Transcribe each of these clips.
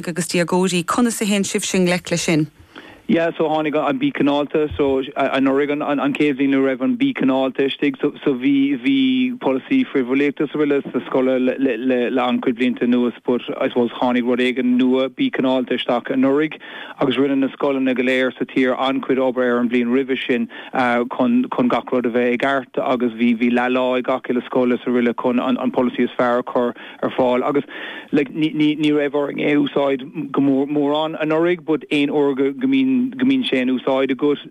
agus déagóirí, conas a théann sibhse i ngleic leis sin? Yeah, so tháinig an Bí Cineálta, so anuraidh an chéad bhliain a raibh an Bí Cineálta istigh, so so bhí bhí polasaí frithbhulaíochta is araile sa scoil le le an-chuid blianta anuas but I suppose tháinig rud éigin nua, Bí Cineálta, isteach anuraidh agus rinne na scoileanna go léir sa tír an-chuid obair ar an bhliain roimhe sin chun chun gach rud a bheith i gceart agus bhí bhí leathlá ag gach uile scoil is araile chun an an polasaí is fearr a chur ar fáil agus like ní raibh orainn é úsáid go mór mórán anuraidh but aon uair go mbíonn go mbíonn sé in úsáid agat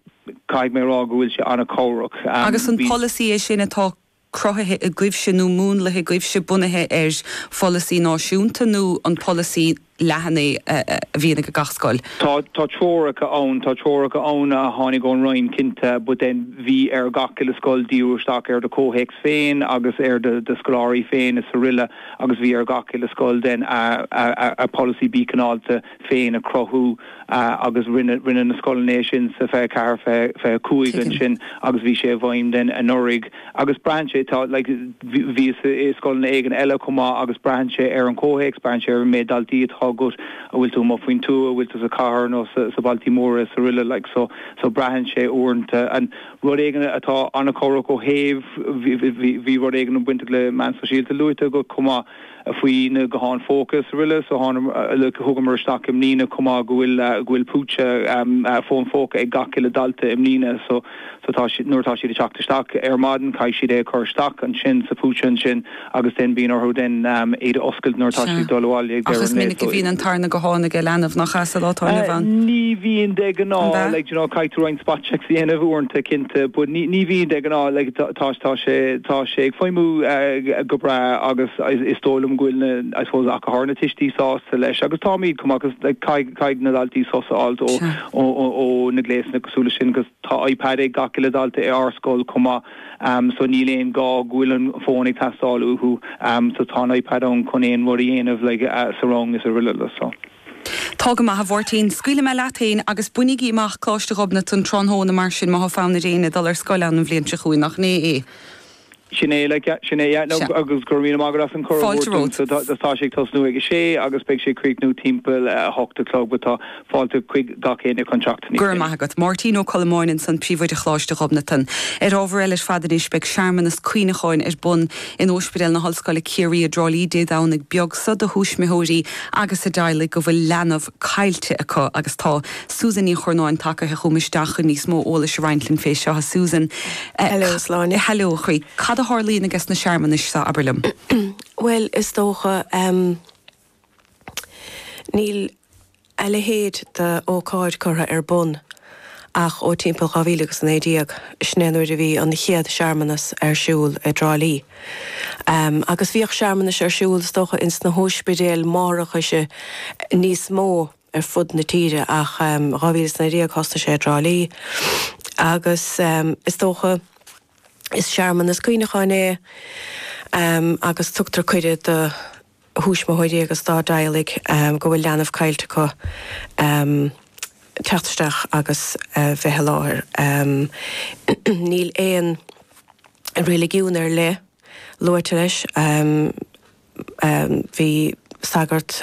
caithfidh mé a rá go bhfuil sé an-chabhrach Agus an polasaí é sin atá cruthaithe agaibhse nó múnlaithe agaibhse bunaithe ar pholasaí náisiúnta nó an polasaí leathan é a bhíonn ag gach scoil. Tá treoracha ann, tá treoracha ann a tháinig ón Roinn, cinnte, but then bhí ar gach uile scoil díriú isteach ar do chomhthéacs féin agus ar do scoláirí féin is araile agus bhí ar gach uile scoil then a polasaí Bí Cineálta féin a chruthú agus rinne na scoileanna é sin sa 24, 25 ansin agus bhí sé i bhfeidhm then anuraidh. Agus braitheann sé, tá, like, bhíos i scoileanna éigin eile chomh maith agus braitheann sé ar an chomhthéacs, braitheann sé ar an méid daltaí atá agat, an bhfuil tú amuigh faoin tuath, an bhfuil tú sa chathair nó sa bailte móra is araile, like, so, so braitheann sé uaireanta. And rud éigin atá an-chabhrach ó thaobh, bhí, bhí, bhí rud éigin bainteach le meáin sóisialta luaite agat chomh maith, Faoi na gutháin phóca is araile, so thugamar isteach i mbliana chomh maith go bhfuil púitse fón phóca ag gach uile dalta i mbliana, so nuair atá siad ag teacht isteach ar maidin caithfidh siad é a chur isteach ansin sa phúitse ansin agus then bíonn orthu then iad a oscailt nuair atá siad ag dul abhaile ag deireadh an lae. Ach is minic a bhíonn an tarna guthán ag an leanbh, nach ea, sa lá atá inniu ann? Ní bhíonn de ghnáth, like, you know, caithfidh tú roinnt. spot checks a dhéanamh uaireanta, cinnte, but ní bhíonn de ghnáth, like tá sé, tá sé ag feidhmiú go breá agus is dóigh liom go bhfuil na, I suppose, ach go háirithe na tuistí sásta leis agus táimid chomh maith cause like caithfidh na daltaí sos a fháil ó, ó na gléasanna cosúil leis sin cause tá iPad ag gach uile dalta i ár scoil chomh maith so níl aon gá go bhfuil an fón ag teastáil uathu so tá an iPad ann chun aon rud a dhéanamh like sa rang is araile so. Tá go maith, a Mháirtín. Scaoilfidh mé leat féin, agus bainigí amach Coláiste Ghobnatan tráthnóna mar sin, má thá fonn ar éinne dul ar scoil ann an bhliain seo chugainn, nach in é é? Sin é, like, sin é, yeah. Sea. Agus go raibh míle maith agat as an cuireadh a thabhairt domsa. Fáilte romhat. Tá sé ag tosnú ag a sé agus beidh sé ag críochnú timpeall a hocht a chlog, but tá fáilte chuig gach éinne chun teacht níos déanaí. Go raibh maith agat. Máirtín Ó Colmáin ansan, Príomhoide Choláiste Ghobnatan. Ar ábhar eile ar fad anois, beidh searmanas cuimhneacháin ar bun, In Ospidéal na hOllscoile Ciarraí i dTrá Lí Dé Domhnaigh beag so do thuismitheoirí agus a dteaghlaigh go bhfuil leanbh caillte acu agus tá Susan Ní Churnáin tagaithe chugam isteach chun níos mó eolais a roinnt linn fé seo. A Susan. Hello a Shláine. Hello a chroí. Cad a tharlaíonn i gcas na searmanais so, abair liom? Bhuel, is dócha. Níl a leithéid de ócáid curtha ar bun ach ó timpeall 2019, sin é an uair a bhí an chéad searmanas ar siúl i dTrá Lí. Agus bhíodh searmanais ar siúl, is dócha, ins na hóispidéil máithreachais níos mó ar fud na tíre ach i 2019 thosnaigh sé i dTrá Lí agus is dócha is searmanas cuimhneacháin é agus tugtar cuireadh do thuismitheoirí agus dá dteaghlaigh go bhfuil leanbh caillte acu teacht isteach agus bheith i láthair. Níl aon reiligiún ar leith luaite leis, bhí sagart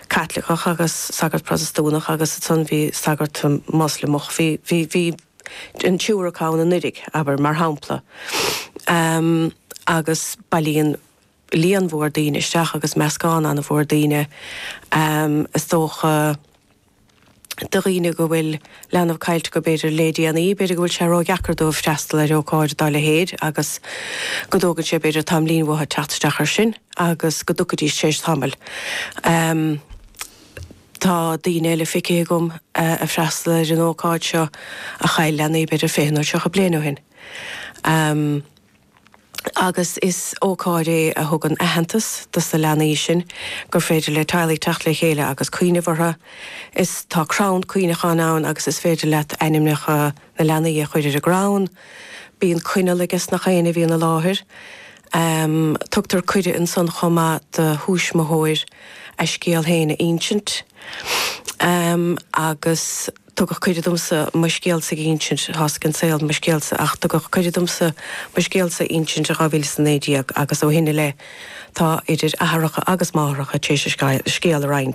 Caitliceach agus sagart Protastúnach agus ansan bhí sagart Moslamach, bhí an triúr acu ann anuraidh, abair, mar shampla, agus bailíonn. líon mhór daoine isteach agus meascán an-mhór daoine, is dócha de dhaoine go bhfuil leanbh caillte acu b'fhéidir le déanaí, b'fhéidir go bhfuil sé ró-dheacair dóibh freastal ar ócáid dá leithéid agus go dtógann sé b'fhéidir tamaillín uathu teacht isteach ar sin agus go dtiocfaidís tar éis tamaill. Tá daoine eile feicthe agam ag freastal ar an ócáid seo a chaill leanaí b'fhéidir fiche nó tríocha bliain ó shin. agus is ócáid é a thugann aitheantas dos na leanaí sin gur féidir le teaghlaigh teacht le chéile agus cuimhneamh orthu. Is tá crann cuimhneacháin ann agus is féidir leat ainmneacha na leanaí a chur ar an gcrann. Bíonn coinneal aiges na héinne a bhíonn i láthair. Tugtar cuireadh ansan chomh maith do thuismitheoir a scéal féin a insint agus. tugadh cuireadh domsa mo scéalsa a insint, tá a fhios ag an saol, mo scéalsa, ach tugadh cuireadh domsa mo scéalsa a insint i 2019 agus ó shin i leith tá idir athaireacha agus máithreacha tar éis a scéal a roinnt.